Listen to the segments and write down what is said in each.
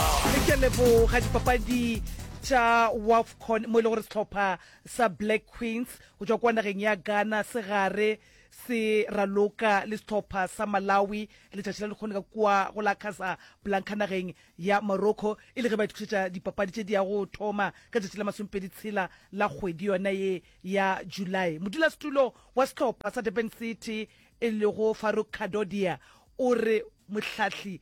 Re ke leboga dipapadi tša Wafcon mo e le gore sehlopha sa Black Queens go tšwa kwa nageng ya Ghana se gare se raloka le sehlopha sa Malawi letšatši la lekgone ka kua go la Casablanca nageng ya Morocco e le ge ba itokišetša dipapadi tše di ya go thoma ka tšatši la masomepedi tshela la kgwedi yona ye ya July. Modulasetulo wa sehlopha sa Durban City e lego Farouk Kadodia o re mohlahli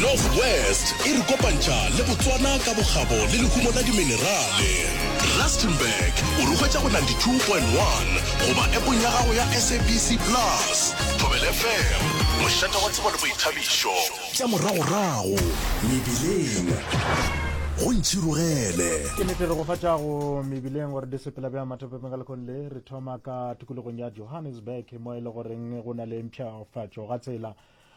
North West e re kopantšha le Botswana ka bokgabo le lehumo la diminerale. Rustenburg o re hwetša go 92.1 goba epong ya gago ya SABC Plus. Thobel FM, mošate wa tsebo le boithabišo. Tša moragorago mebileng go ntšhirogele. Ke nete re go fa tšago mebileng gore di sepela bja mathopepeng ka lekgong le re thoma ka tikologong ya johannesburg mo e le goreng go na le mpšhafatšo ga tsela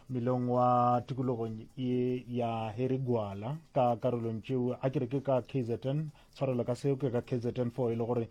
melong wa tikologong ye ya herigwala ka karolong tšeo a kere ke ka kzn tshwarelo ka seo ke ka kzn fo e le gore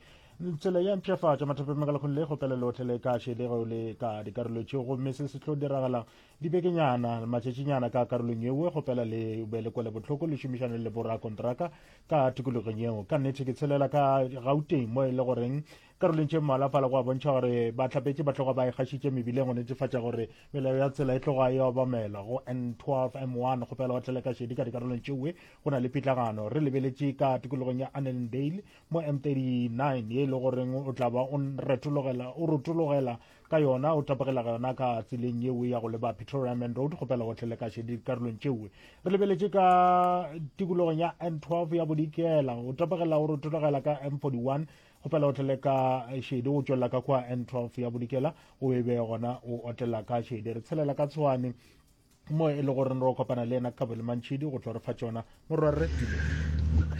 tsela ya mpšhafatša mathape makalakgong le go pela lotlhe le ka šedego le ka dikarolo tšeo gomme se se tlo diragala dibekenyana matšatšinyana ka karolong yeo go pela le be le kwele bohloko le šomišane le borakontraka ka tikologong yeo ka nnete ke tshelela ka gauteng mo e le goreng Karolong tše mmalwa fala go a bontšha gore bahlapetše ba tloga ba ikgašitše mebileng go netefatša gore melao ya tsela e tloga e obamelwa go N12 M1 go pela go tlele ka šedi ka dikarolong tšewe go na le pitlagano re lebeletše ka tikologong ya Annandale mo M39 ye e le goreng o tla ba o retologela o rotologela ka yona o tapogela ga yona ka tseleng yeo ya go leba Pretoria Main Road go pela go tlele ka šedi dikarolong tšewe re lebeletše ka tikologong ya N12 ya bodikela o tapogela o rotologela ka M41 kgopela o tlele ka šedi go tšwelela ka kwa n 12 ya bodikela o e be gona o otlela ka šedi re tshelela ka tshwane mo e le gore re kopana le ena ka bolemantšhidi go tlo re fa tsona morwarre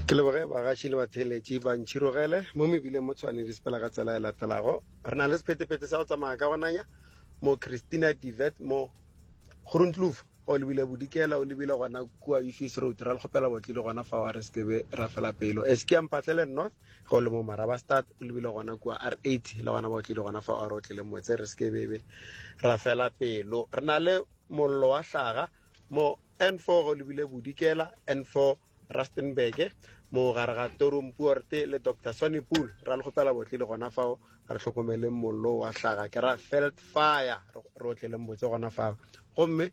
ke leboge bagaši le batheeletši ba ntšhirogele mo mebileng mo tshwane di sepela ka tsela e latelago re na le sephetephete sa go tsamaya ka gonanya mo christina divet mo grontlof o lebile bodikela o lebile gona kua ufis road ra le kgopela botlile gona fa wa re sekebe ra fela pelo eskeampatlele north ge o le mo marabastad o lebile gona kua r eight le gona ba o tlile gona fa a re o tlile motse re seke bebe ra fela pelo re na le mollo wa hlaga mo n four ge o lebile bodikela n four rustenburg mo gare ga torum puorte le doctor sonny pool ra le kgopela botle le gona fao re tlhokomeleng mollo wa hlaga ke ra felt fire re o tleleng botse gona fao gomme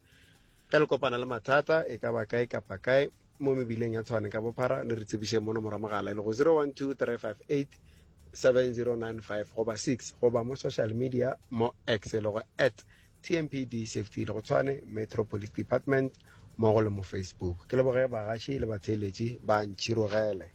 Ge le kopana le mathata, e ka ba kae kapa kae, mo mebileng ya Tshwane ka bophara, le re tsebišeng mo nomoro ya mogala e lego 0123587095 goba 6 goba mo social media mo X e lego at TMPD Safety e lego Tshwane Metro Police Department mmogo le mo Facebook. Ke leboge bagaši le batheeletši ba Ntšhirogele.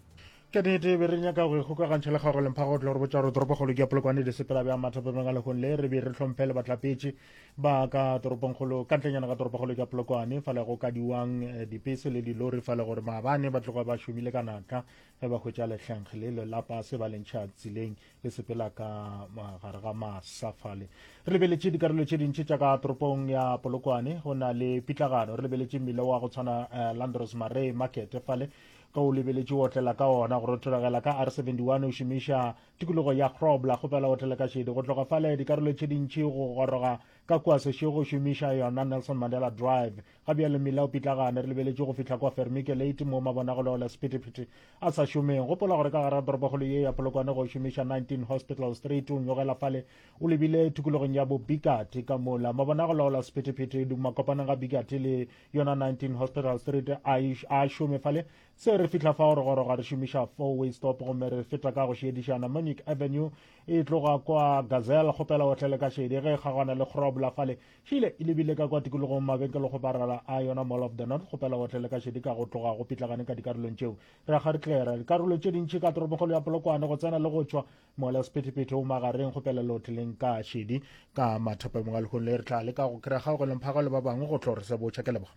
Ka nnete, be re nyaka go ikgokagantšha le kgaolo lemphago go tla go re botša gore toropokgolo ke ya Polokwane, Disepela bja Mathapameng a lehung le, re be re hlomphe le bahlapetši. ba ka toropongkgolo ka ntlenyana ka toropokgolo ka polokwane fa le go ka diwang eh, dipese le dilori fa le gore maabane ba tloga ba šomile ka natla ge ba hwetša lehlengge le lelapa se ba lentšha tseleng le sepela ka gare ga masafale re lebeletše dikarolo tše dintši tša ka toropong ya polokwane go na le pitlagano re lebeletše mmile wa go tshwana eh, landros marray market fale ka o lebeletše o otlela ka ona go rothogela ka r 71 o šomiša Tikologo ya Grobler go fela otele ka šedi go tloga fale dikarolo tše dintši go goroga ka kua sešo go šomiša yona Nelson Mandela Drive. Ga bjale mmila o pitlagane, re lebeletše go fihla kua Fermike Late mo mabonagolo le sephethephethe a sa šomeng. Gopola gore ka gare ga toropokgolo ye ya Polokwane go šomiša 19 Hospital Street o nyogela fale o lebile tikologong ya bo Bikati ka mola. Mabonagolo le sephethephethe di makopaneng ga Bikati le yona 19 Hospital Street a šome fale Se re fihla fao re goroga re šomiša four-way stop gomme re feta ka go šiediša Namonic Avenue e tloga kwa Gazelle kgopela o tlele ka šedi ge e kgagwana le Grobler fale. Šile e lebile ka kwa tikologong mabenkelo go barala a yona Mall of the North kgopela o tlele ka šedi ka go tloga go pitlagane ka dikarolong tšeo. Re akga re tlera dikarolong tše dintši ka toropokgolo ya Polokwane go tsena le go tšwa. Mola sephethephethe o magareng kgopela le o tleleng ka šedi ka mathapamong a lehung le re tla leka go kry-a kgaogelong phaga le ba bangwe go tlo re sebotša. Ke leboga.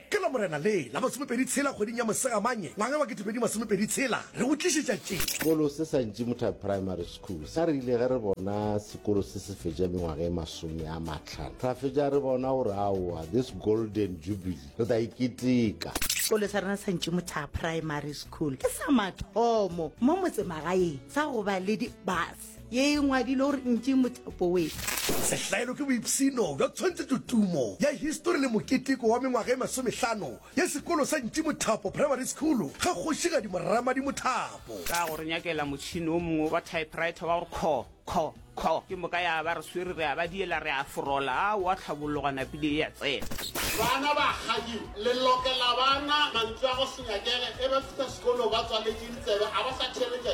Ke Lamorena le la masomepedi tshela kgweding ya Mosegamanye ngwaga wa ketepedi masomepedi tshela re go tlišetša tše. Sekolo se sa Ntšimuthabi Primary School sa rile ge re bona sekolo se se fetša mengwaga e masome a mahlano ra fetša re bona gore aowa this golden jubilee re tla e keteka. Sekolo sa rena sa Ntšimuthabi Primary School ke sa mathomo mo motsemagaeng sa go ba le di bus. ye e ngwadilwe gore ntši mothapo we. Sehlaelo ke boipsino bja tshwantshetšo tumo ya histori le moketeko wa mengwaga e masomehlano ya sekolo sa Ntši Mothapo Primary School ga Kgošigadi Morramadi Mothapo. Ka go re nyakela motšhini o mongwe wa typewriter wa go kho, kho, kho, ke moka ya ba re swere re a ba diela re a forola, a wa tlhabologa napile e a tsena. Bana ba kgadi le lokela bana mantswe a go se nyakele e ba fihla sekolo ba tswaletše ditsebe a ba sa theeletša